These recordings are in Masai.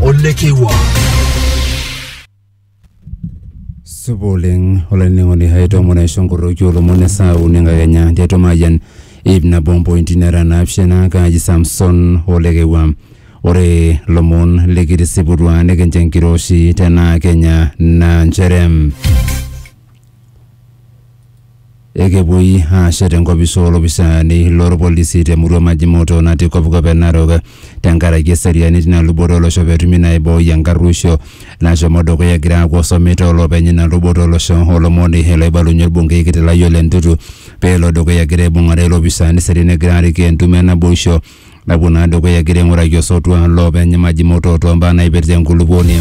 ole kiwa supa oleng olainining'oni hai tomon aisho nkoroki olomon esaa uni enkakenya tiatua mayian ip nabo mpointi nara naapishana kaaji samson olekewua ore lomon likitisiputua nikincho enkiroshi tenaa kenya naa nchere Ekepuoi aashet enkopis oo lopisaani loo lpolisi te murua Majimoto natii kopkop e Narok tenkaraki eseriani tina luboto olosho petumi naa aibooi enkarruisho nashomo dukuya egira aaku osomi too loopeny ina luboto olosho o lomoni loibalunye olbunkei kiti lai Ole Ntutu peelo dukuya egira aibung'are ilopisaani eseriani egira aarik entumo e naboisho napuo naa dukuya egira aing'uraki osotua loopeny Majimoto too mbaa naipirta enkulupuoni.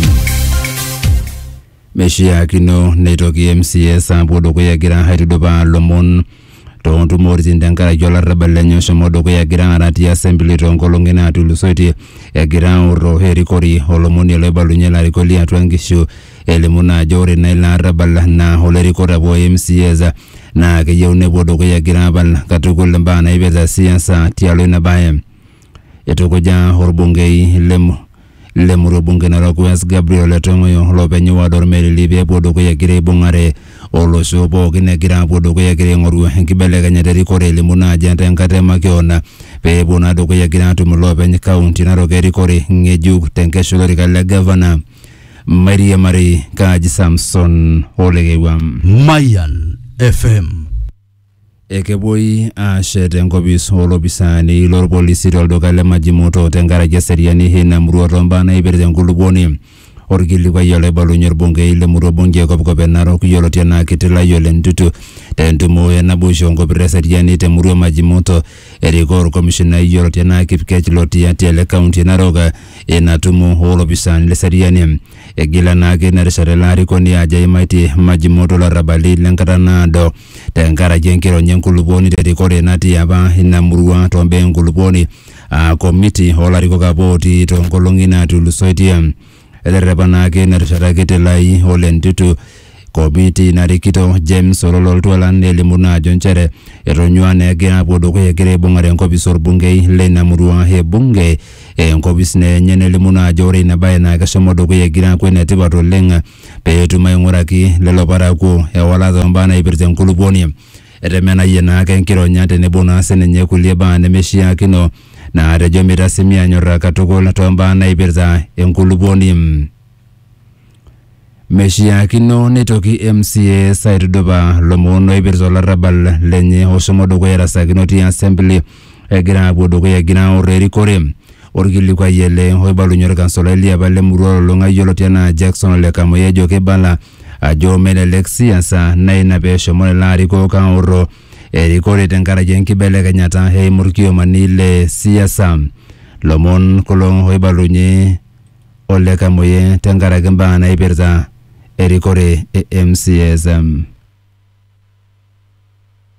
Meshiakino neitoki MCAs aapuo dukuya egira aitudupaa lomon too ntumoritin tenkaraki olarrabal lenye oshomo dukuya egira aara ti assembly too nkolong'i naatulusoitie egira aorro erikori olomoni loibalunye larikok li atua nkishu elimu naa ajo ore naa ilo arrabal naa olerikore apa o MCAs naa keyieu nepuo dukuya egira apal katukul imbaa naipirta siasa tialo ina bae. Eitukuja olbungei le mu- le murua bunge Narok West Gabriel Ole Tong'oyo loopeny ward Olmerili pee epuo dukuya egira aibung'are olosho pookin egira apuo dukuya egira aing'oru enkibelekenyata erikore elimu naa ajenda enkata e makeon pee epuo naa dukuya egira atum iloopeny kaunti Narok erikore ng'ejuk te nkesha olorika le gavana Mairiamari Kaji Samson Olekewa. Mayan FM. Ekepuoi aashet enkopis oo lopisaani lo lpolisi to lduka le Majimuto tenkaraki eseriani e ina murua too mbaa naaipirta enkulupuoni. Olkilikuai olaibalunye olbungei le murua bunge e Kopkop e Narok yioloti anaa Kiti Layiole Ntutu te ntumo e naboisho o nkopirr e seriani te murua e Majimuto. Erikoo olkomishinai yioloti anaa Kipkech Lotiatia le kaunti e Narok ina tumo oo lopisaani le seriani. Egila naa ake ina rishata ilo arikoni ajo eimaitie Majimoto ilarrabali le nkata naado te nkaraki enkironya e nkulupuoni te rikore natii apa ina murua too mbaa e nkulupuoni aa komiti oo larikok apa ootii too nkolong'i naatulusoitie. Eterrepa naa ake ina rishata kiti Lai ole Ntutu Kopiiti ina rikito, James Ololol Twala nelimu naa ajo nchere etonyua naa egira apuo dukuya egira aibung'are enkopis olbungei leina murua e bunge enkopis naa enye nelimu naa ajo ore ina bae naa keshomo dukuya egira aaku enetipat oleng pee etum aing'uraki lelo parakuo ewalata oombaa naipirta enkulupuoni. Etemenayie naa ake enkironya tenebo naa sininye kulie baa nemeishiakino naatejo meitasimi aanyorraa katukul toombaa naipirta enkulupuoni. Meshiakino neitoki MCAs aitudupa lomon oipirta olarrabal lenye oshomo dukuya erasakino ti assembly egira apuo dukuya egira aor erikore. Orkilikuai ele oibalunye orkansolai liapa le murua olulung'a yioloti enaa Jackson Ole Kamoyia ejo keibala ajo melelek siasa na ina peshomo lelo arikok aoro erikore tenkaraki enkibelekenyata eimu irkiomani le siasa. Lomon kulo oibalunye o le Kamuye tenkaraki mbaa naipirta erikore e MCAs.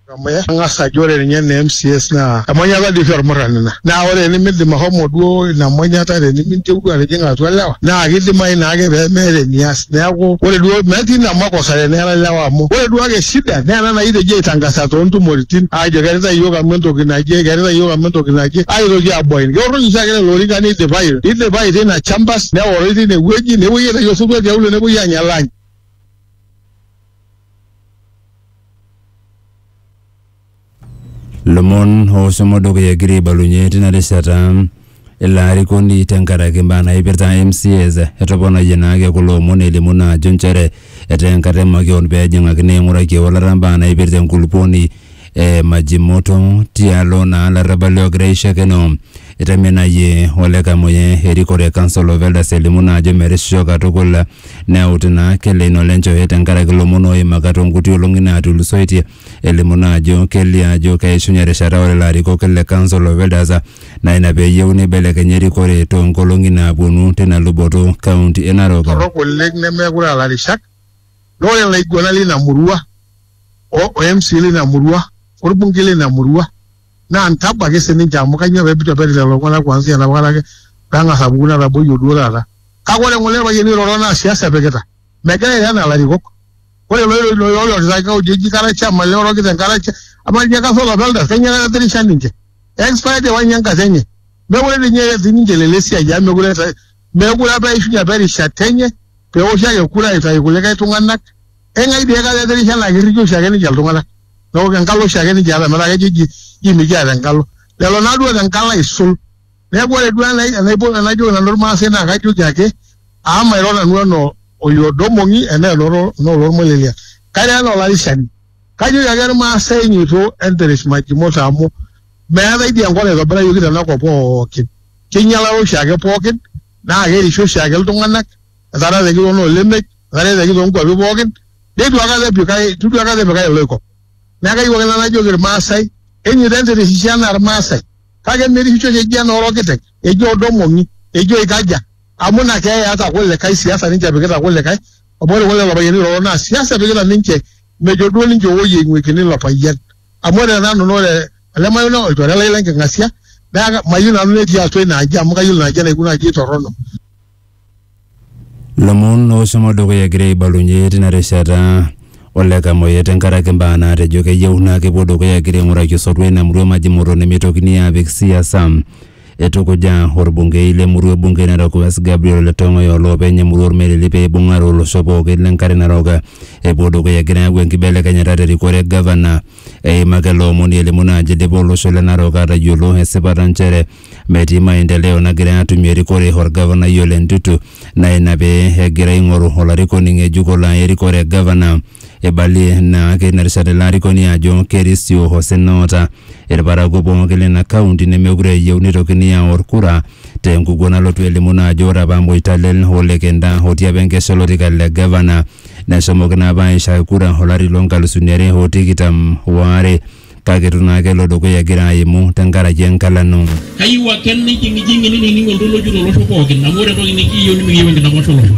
Kamuye ang'as ajo ore ninye ene MCAs naa emonyata dii oshi olmurrani ina. Naa ore enimidim ashomo duo ina monyata teniminteru atijing'a atua lewa naa kidimayu naake pee meeta enias. Neaku ore duo metii ina makosa teneera lewa amu ore duo ake shida naa ena naitejo aitangasa too ntumoritin aajo kearita iyiook amu entoki naje, kearita iyiook amu entoki naje aitoki aabuain. Keorroi oshiake lelo orikan neidipayu, neidipayu teina champas neoroi teine wueji nepuoi aitayu osotua tiaulo nepuoi aanya lunch. Lomon ooshomo dukuya egira aibalunye tina rishata ilo arikoni tenkaraki imbaa naipirta MCAs etoponayie naake kulo omon elimu naa ajo nchere etaa enkata e makeon pee ejing'akini aing'uraki ewalata imbaa naipirta enkulupuoni e Majimoto tialo naa ilarrabali oogira aishakeno. Etemenayie Ole Kamuye erikore e Council of Elders elimu naa ajo merisisho katukul neut naa Keleino Lenjohe tenkaraki ilomon ooimaka toonkuti olong'i naatulusoitie elimu naa ajo kelio ajo keishunye erishata ore larikok le Council of Elders naa ina peeyieu neibelekenya erikore too nkolong'i naaponu tina luboto County e Narok. torrok oleng nemeekure aa larishak naa ore ilaiguanak leina murua o mca leina murua olbungei leina murua naa ntabo ake sininche amu kainyoo pee eitu eperi lelo tung'anak kuanzia enapa kata ake pee eng'as apuku netaboyie duo taata kake ore ng'ole irpayiani oiroro naa siasa epikita megira airo enaa ilarikok ore looirorita kaunti eji kara chairman lelo orokita enkara cha amaa ninye kasa olapa elde kainyio kata etirisha ninche expired ewa ninye enkata enye mekure dii ninye etii ninche lelo esiai amu mekure eeta mekure apa eishunye apa erishata enye pewoshi ake kura aitayu kulikae tung'anak eng'ae dii aikata etirisha naa kirrikie oshiake ninche iltung'anak neeku enkalo oshiake ninche eeta metaa kejo eji jii mikiata enkalo lelo naaduo oota enkalo aisul. Neeku ore duo enai- enaipot enajoki nanu Irmaasai naa kajoki ake amu mairo nanu enaa oiodong'ong'i enaa enoto enaa olormolelia. Kairo enaa olarishani. Kajoki ake Irmaasai enyoito enteresh majimoto amu meetae dii enkop naitobirayioki tena kop pookin. Keinyialaro oshiake pookin naa kerishi oshiake iltung'anak etaretate enkitoo noo lemej, etareteteki too nkuapi pookin neitu aikata epikae eitu duo aikata epikae iloikop. Neeku kayieu ake nanu najoki Irmaasai enyoito enteresh isho enaa Irmaasai. Kake merishisho keji enoo lokiteng, eji odong'ong'i, eji oikaja. Amu ina keeya eata kulikae, siasa ninche epikita kulikae. Amu ore kulelo payiani oiroro naa siasa epikita ninche, mejo duo ninche ewuoi eing'uikini ilo payian. Amu ore tenanu naa ore ele mayian naa olchore lai le nking'asia, neaku mayieu nanu netii atua ina aji amu kayiolo ina aji enaikunaji torrono. Lomon oshomo dukuya egira aibalunye tina rishata ole Kamoyia tenkaraki mbaa naatejo keyieu naa kepuo dukuya egira aing'uraki osotua ina murua maji moto nemeitokini aapik siasa. Eitukuja orbungei le murua e bunge e Narok West Gabriel Ole Tong'oyo oloopeny emurua Ormelili pee eibung'are olosho pooki le nkare narok epuo dukuya egira ayau enkibelekenyata te rikore e gavana. Eimaka ele omoni elimu naa ajo eidipa olosho le Narok aatayiolo esipata nchere metii maendeleo nagirai aatumie erikore olgavanai Ole Ntutu naa ina pee egira aing'oru olarikoni ng'ejuk olo aya erikore e gavana. Eibalie naake ina rishata ilo arikoni ajo kerisio osina oota ilparakuo pooki leina kaunti nemeekure eyieu neitokini aaor kura te nkukuo nalotu elimu naa ajo ore apa Moitalel o Lekenda otii apa enkesha olorika le gavana neshomoki naa apa aaishae kura olari loo nkalusuni are o tikitam o are. kake itu naa kelo dukuya egira aimu tenkaraki enkalano. Kayieu ake nijing'ijing'i nining' oltoloki tolosho pookin amu ore entoki nikiyieu nimikiyieu enkidapash olosho.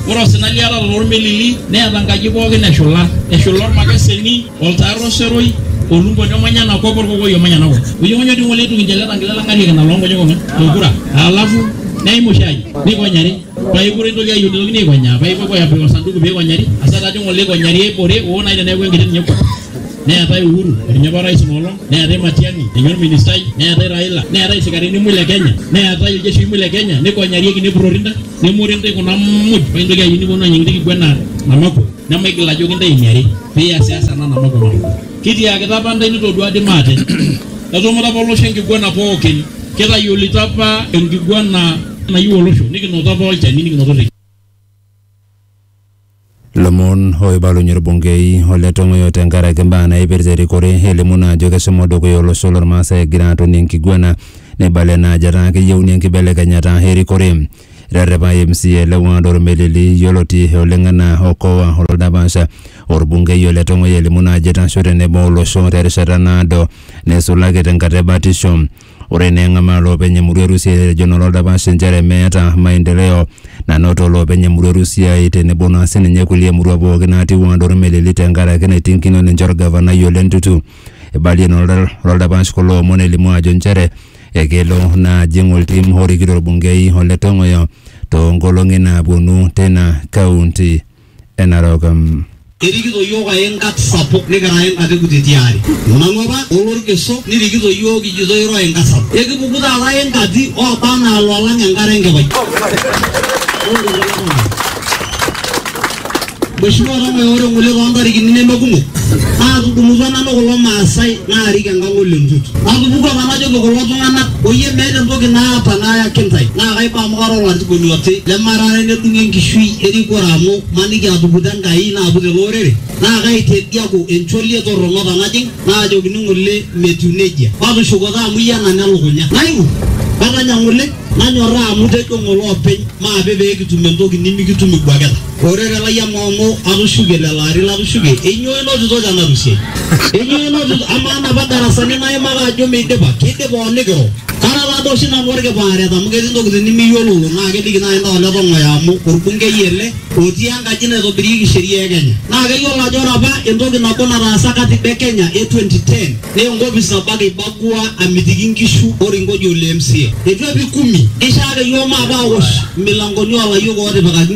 Ore osina liatata lolmelili neeta nkaji pookin eshula, eshula olmakeseni, oltaar oseroi, olumboni omanya ena kop olkokoi omanya ena kop. Oyong'onyo dii ng'ole eitu kinchele tangila lang'arie kina loo nkonyek ong'wan te nkura. Alafu neimu oshi aji neikonyari paekure eitoki ayieu neitokini aikonyaa paipuopuo aapik osanduku peikonyari asa taa dii ng'ole eikonyari eibore oo naaji teneaku enkiti ninye kop. neetae Uhuru eninye apa orais inoolong, neetae Matiang'i ninye orministai, neetae Raila, neetae isikarini muj le Kenya, neetae iljeshii muj le Kenya, nikonyarieki nepurrori ntae, nemore ntae kuna muj paa intoki ayieu niponu aanya enkiti kiguena namaku nemaigil ajoki ntae eniare piasiasa ena namaku namaku. Kitiakita apa ntae nitodua dii maate, etumuta apa olosho enkiguena pookin, kitayiolito apa enkiguena nayieu olosho nikinoto apa olchani nikinoto irriki. Lomon oibalunye olbungei o le Tong'oyo tenkaraki imbaa naaipirta erikore elimu naa ajo keshomo dukuya olosho lolmaasai egira atonie enkiguena neibala ena ajo etaa keyieuni enkibelekenyata erikore. Eterrepa MCA le ward Olmelili yioloti oleng anaa Okoa Oldapash olbungei o le Tong'oyo elimu naa ajo eitasho tenebo olosho terishata naado neisulaki tenkata e batisho. Ore naa eng'amaa loopeny emurua e Rusia etejo naa oldapash inchere meeta maendeleo nanoto loopeny emurua e Rusia tenebo naa sininye kulie murua pooki naatiu anaa Olmelili tenkaraki naiting'ikino ninche olgavanai Ole Ntutu. Eibalie naa olda- oldapash kulo omon elimu ajo inchere ekelo naa ajing oltim orikito olbungei Ole Tong'oyo toonkolong'i naapuonu teina kaunti. enarokm. Erikito iyiook ae nkat sapuk nikira ae nkat e kutiti aare. Olang'uapa o lorkeso nirikito iyiook kijito iro ae nkat sapuk. Ekipuku taata ae nkati ooba anaa loolang enkare enkipai. Mheshimiwa Ong'oe ore ng'ole too ntarikini neme kumok naatudumutua nanu kulo maasai naarik enkang ole Ntut. Natupukuo apa najoki kulo tung'anak oyie meeta entoki naata nayaki intae naa kaiba Koro ng'atubulu oti lemarare nedung' enkishui erikore amu maniki atuputa Enkai naaput ele orere naa kaitediaku encholie torrono tanajing' naajokini ng'ole metiu nejia. Matushuko taa amu iyie enanya elukunya. Naiu katanya ng'ole nanyorraa amu tejo ng'ole openy maape pee kitum entoki nimikitum ibuakita. Ore te lai amaa amu atushuke lelo ari latushuke, enyoo inotito te narusi ai? Enyoo inotito? Amaa napa darasani naimaka ajo meidipa, keidipa o nikiro? Kara taa doi oshi nanu olkipaaret amu ketii ntokitin nimiyiololo naa keliki naaji intae ole Tong'oyo amu olbungei ele otii enkaji naitobirieki sheria e Kenya. Naa keyiolo ajo ore apa entoki nabo nataasa katiba e Kenya e 2010, Naa enkopis nabo ake eibagua amitiki nkishu olkingojio le MCA. Eitu epik kumi. Keishaa ake iyiook maape aawosh imilankoni oo layiok ootipikaki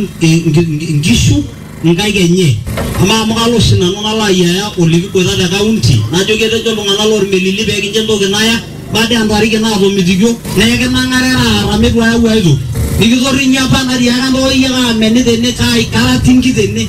nkishu nkaik enye. Amaa amu kalo oshi nanu nalo ayiaya olikiboita te kaunti najoki etejo iltung'ana loo lmelili pee kincho entoki naya baada oo ntariki naatomitikio naa ekinang'are taata mitu ayau aitoki. Nikitorrinyo apa natiaka ntooyie kaameni tene, kaai, kara tinki tene.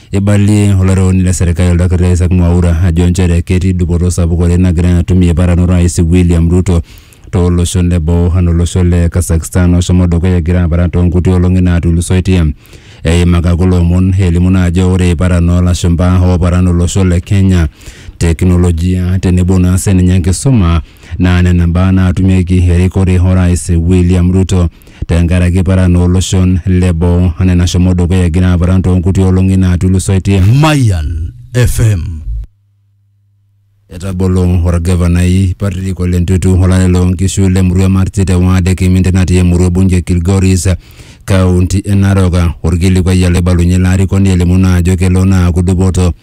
Eibalie olarewoni le serkali Oldakitari Isaac Mwaura ajo nchere ketii dupoto sapuk oleng nagira atum iyepat anoto Orais William Ruto too loshon le boo anaa olosho le Kazakhstan oshomo dukuya egira aparan too nkuti olong'i naatulusoitie. Eimaka kulo omon elimu naa ajo ore iparan oo lashumpa ooparan olosho le Kenya, teknolojia tenebo naa sininye enkisuma naa nena mbaa naatumieki erikore Orais William Ruto. tenkaraki paran oo loshon le boo anaa enashomo dukuya egira aparan too nkuti olong'i naatulusoitie. Mayian FM. Etabolo olgavanai Patrick Ole Ntutu olale loo nkishu le murua e Marti te waad e Kiminte natii emurua e Bunju e Kilgoris, kaunti e Narok. Olkilikuai ele oibalunye ilo arikoni elimu naa ajo kelo naa aaku dupoto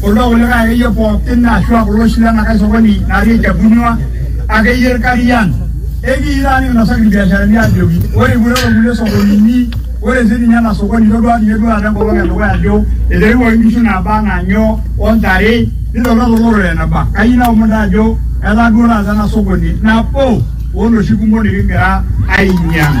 Kuldo kulikae akeyie pookin ashua kulo oshi lenakae sokoni natii Ejabunyua akeyie Irkarian ekiitaa nikinosaki irbiasharani ajoki ore ipuoitata kulie sokonini ore sininye ena sokoni itodua ninye duo taata enkolong edukuya ajo eterewuaki inkishu naaba anaa nyoo ontare nitodua tolorere eneba kayieu naomon taa ajo etaa duo taata ena sokoni nabo oloshi kumok nikigira ainyiang'.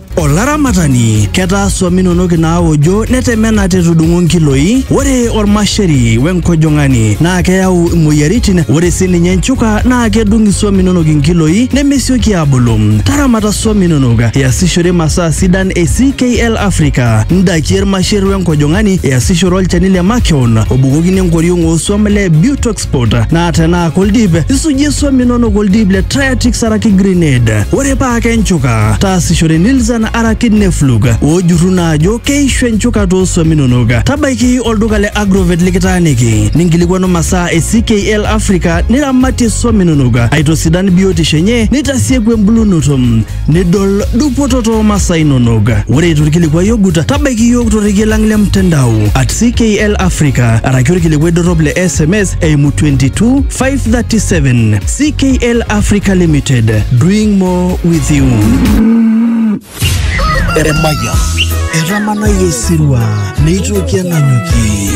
Olaramatani, ketaa swam inonok inaawojo netemena te tudung'o nkiloi. Ore olmasheri we nkojong'ani naa keyau imoyiaritin. Ore sii ninye nchuka naa kedung iswam inonok inkiloi nemesioki aabulu. Taramata swam inonok iasishore imasaa sidan e CKL Africa. Ndakie ilmasher we nkojong'ani iasishore olchani le makeon obukokini enkoriong oo swam le Butox passport naa tenaa koldip isujie swam inonok oldip le Triatix araki Grenade ore paa kenchuka taasishore Nilzan araki Neflug oojurru naa ajo keishu enchuka too swam inonok tabaiki olduka le Agrovet likitaaniki ninkilikuanu masaa e CKL Africa niramatie swam inonok aitosidan biotisho enye nitasieku embulunoto nidol dupoto too masaa inonok. Ore eitu ilkilikuai ogut, tabaiki iyiook torrekie lang le mtandao at CKL Africa araki olkilikuai dorrop le SMS eimu 22 537 CKL Africa Limited doing more with you. Emayian. Etamanayie esirua neitoki enanyuki.